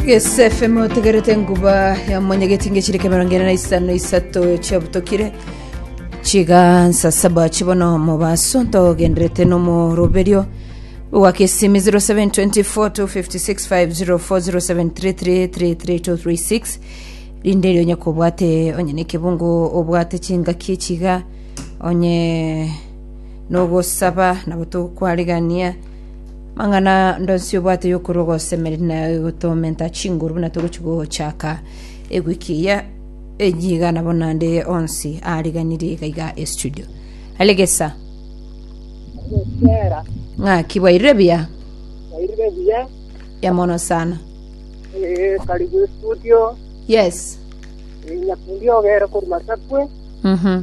gsfm otegerete nguba ya monyegeti ngechire kemerongo ene na isano isato chiabutokire chigansa saba chibono mobaso ntogenderete nomoroberio gwakesimi 0724250407333336 rinde eri onye kobwate onye nekebungo obwate chingaki echiga onye nogosaba nabo tokwarigania mang'ana ndonsi obwate yokorwa osemeri na gotomenta chinguru buna togochi gochaka egwiki eye ejiga nabo nande onsi ariganiri iga iga estudio alegesa Gokera, ng'aki bwairire buya wairire buya, ya mono sana eh, karibu studio, yes eh, nyakundi ogere korwa Masakwe, mhm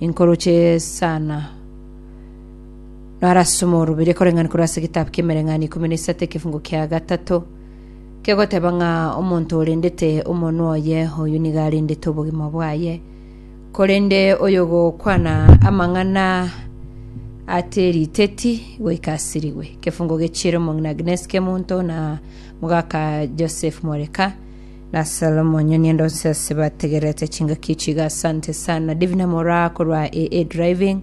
inkoroche sana narasoma orobere koreng'ani korwa ase egetabu ki'emereng'ani ikomi na isato ekefungo kia gatato kegoteba ng'a omonto orendete omonwa oye oyo nigo arendete obogima bwaye korende oyo gokwana amang'ana ate riteti goika asirigwe kefungo gechiere omong'ina agnes kemonto na mogaka joseph mwareka Na Salomo onye niende onsi ase bategererete chingaki echi iga asante sana Divine Moraa korwa AA Driving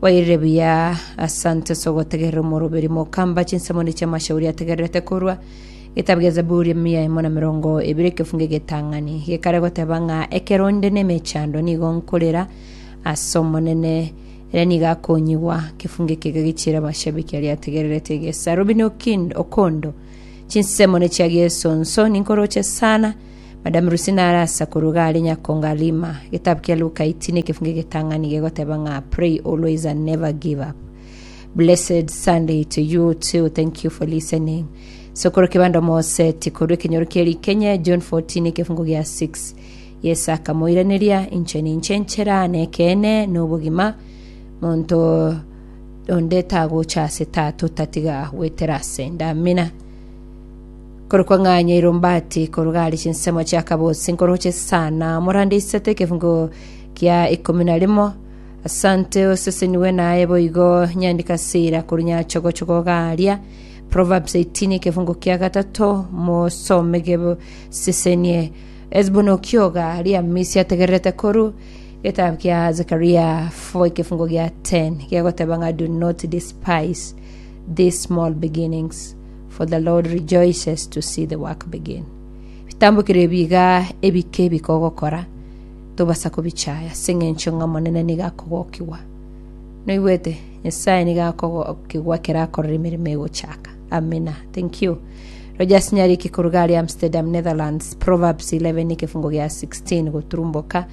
wairire buya asante ase ogotegerera omoroberi mokamba chinsemo ne chiamashauri ategererete korwa getabu gia Zaburi emia emo na mirongo ebere ekefunge getang'ani gekare goteba ng'a ekero onde nemechando nigo nkorera ase omonene ere nigo akonyigwa kefunge kega gichire abashabiki aria ategererete gesa Robin Okin- Okondo Chinsemo ne chia Yeso nso ninkoroche sana, Madam Lucy nare asa korwa iga are Nyakonga Lima. Getabu kia Luka 18 ekefungo egetang'ani gegoteba ng'a pray always and never give up. Blessed Sunday to you too. Thank you for listening. Sokoro Kibando Moseti korwa ekenyoro kia Rikenye John 14 ekefungo gia 6. Yeso akamoiraneria inche ninche enchera nekeene nobogima monto onde tagocha ase tata otatiga gwetera ase ndamina korokwa ng'anya irombati koruga ari chinsemo chia kabosi nkoroche sana morande isato ekefungo kia ikomi na rimo asante oseseniwe naye boigo nyandika sira korunya chogochogo garia proverbs 18 ekefungo kia gatato mosomege sesenie esbono kioga riamisi ategererete koru Getabu kia Zekaria 4 ekefungo gia 10 kegoteba ng'a do not despise these small beginnings for the Lord rejoices to see the work begin. Bitambokire ebi iga ebike ebike ogokora tobasa kobichaya ase eng'encho ng'a Omonene nigo akogokigwa. Noigwete? Nyasae nigo akogokigwa ekero akorora emeremo egochaka. Amina. Thank you. Rogers Nyariki koruga aria Amsterdam, Netherlands, Proverbs 11 ekefungo gia 16 goturumboka